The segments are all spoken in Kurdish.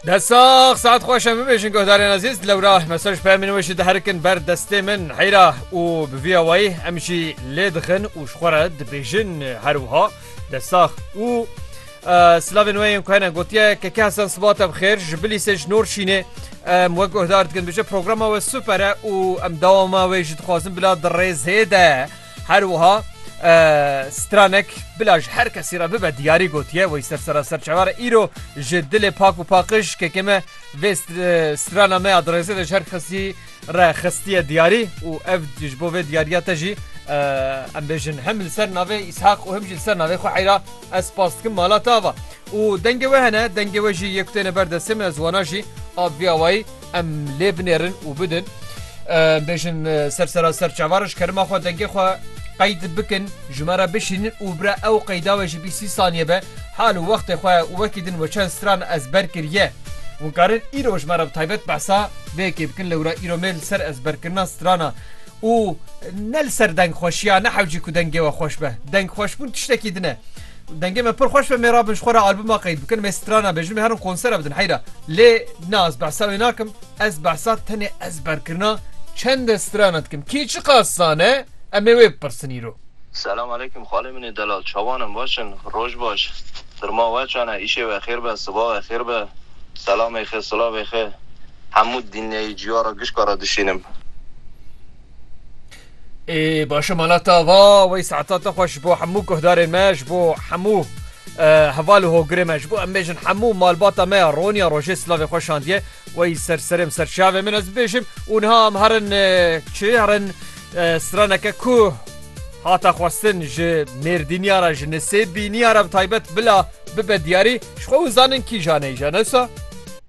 Desax saet xweşe bibêjin guhdarên ezîz lewra mesaj pemîn wê jî diherikin ber destê min heyra û bi vî awayî em jî lê dixin û ji xwe re dibêjin her wiha desax û Slavên wê yên ku hene gotiye keke hesen siba te bixêr ji bilîsê ji nor şînê em wek guhdar dikin bije programa we super e û em dawama wê jî dixwazin bila di rêzê de Her wiha stranek bila ji her kesî re bibe diyarî gotiye wê sersera serçevare îro ji dilê pak û paqiş kekê me vê strana me ya dirêzê de ji her kesî re xistiye diyarî û ev ji bo vê diyariya te jî em bêjin hem li ser navê îshaq û hem jî li ser navê xwe heyra ez spas dikim mala te ava û dengê we hene dengê we jî yê ku têne ber destê min ez wana jî a viyawayî Em lê binêrin û bidin bêjin ser sera ser çavar ji kerima xwe dengê xwe qeyd bikin ji me re bişînin û bire ew qeyda we ji bî sî saniye be hal û wextê xwe û wekî din we çend stran ez ber kiriye û karin îro ji me re taybet behsa vêkê bikin li wira îro mêl ser ez berkirina strana û ne li ser deng xweşiya ne hewcî ku dengê we xweş be deng xweşbûn tiştekî dine. Dengê me pir xweş be mêra bin ji xwe re albuma qeyd bikin mê strana be jin mê herin konsera bidin heyra lê na ez behsa wê nakim ez behsa tenê ezberkirina çende strana dikim kî çi qas zane em ê wê bipirsin îro. Selam aleykum xalê min ê delal çawan in baş in roj baş firma we çan e îşê we xêr be siba we xêr be selamê xê silavê xê hemû dinyeyê ciyara gişka re dişînim. Ê başe mala ta va wey saeta te xweş bo hemû guhdarên me ji bo hemû heval û hogirê me ji bo em bêjin hemû malbata me ya Ronya rojê silavê xwe şandiye wey ser serê ser çavê min ez bêjim û niha em herin çi herin straneke ku hata xwestin ji mêrdîniya re ji nisê bîniya re taybet bila bibe diyarî ji xwe û zanin kîjaneyî janesa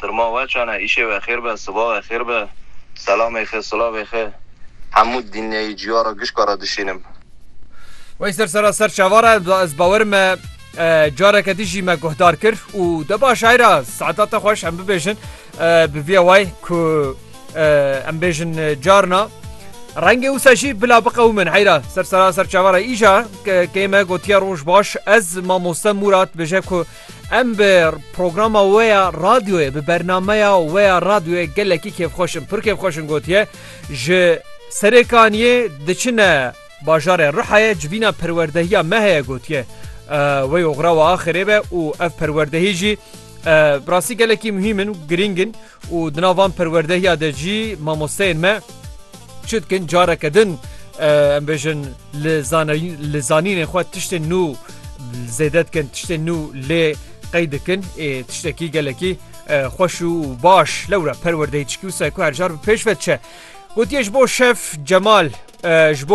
Sirma we çane îşê we xêr be siba we xêr be selamê xê silavê xê hemû dinyeyî ciya ra gişka ra dişînim. Wey ser sera ser çavar e ez bawer me careke din jî me guhdar kir û de baş ayra saeta te xweş em bibêjin bi vîya way ku em bêjin carna Rengê wisa jî bila biqewimin heyra ser sera ser çavara îja kême gotiya roj baş ez mamoste Murat bêje ku Em bi programa we ya radyoyê, bi bernameya we ya radyoyê gelekî kêfxweş in. Pir kêfxweş in gotiye. Ji Serêkaniyê diçine bajarê Rihayê civîna perwerdehiya me heye gotiye. Wey oxira we axirê be û ev perwerdehî jî bi rastî gelekî muhîm in û girîng in. Û di nav van perwerdehiya de jî mamosteyên me çi dikin careke din em bêjin li li zanînên xwe tiştên nû zêde dikin tiştên nû lê qey dikin ê tiştekî gelekî xweş û baş lewre perwerdeyî çikî wisa ku hercar bi pêş ve diçe. Gotiye ji bo şef Cemal ji bo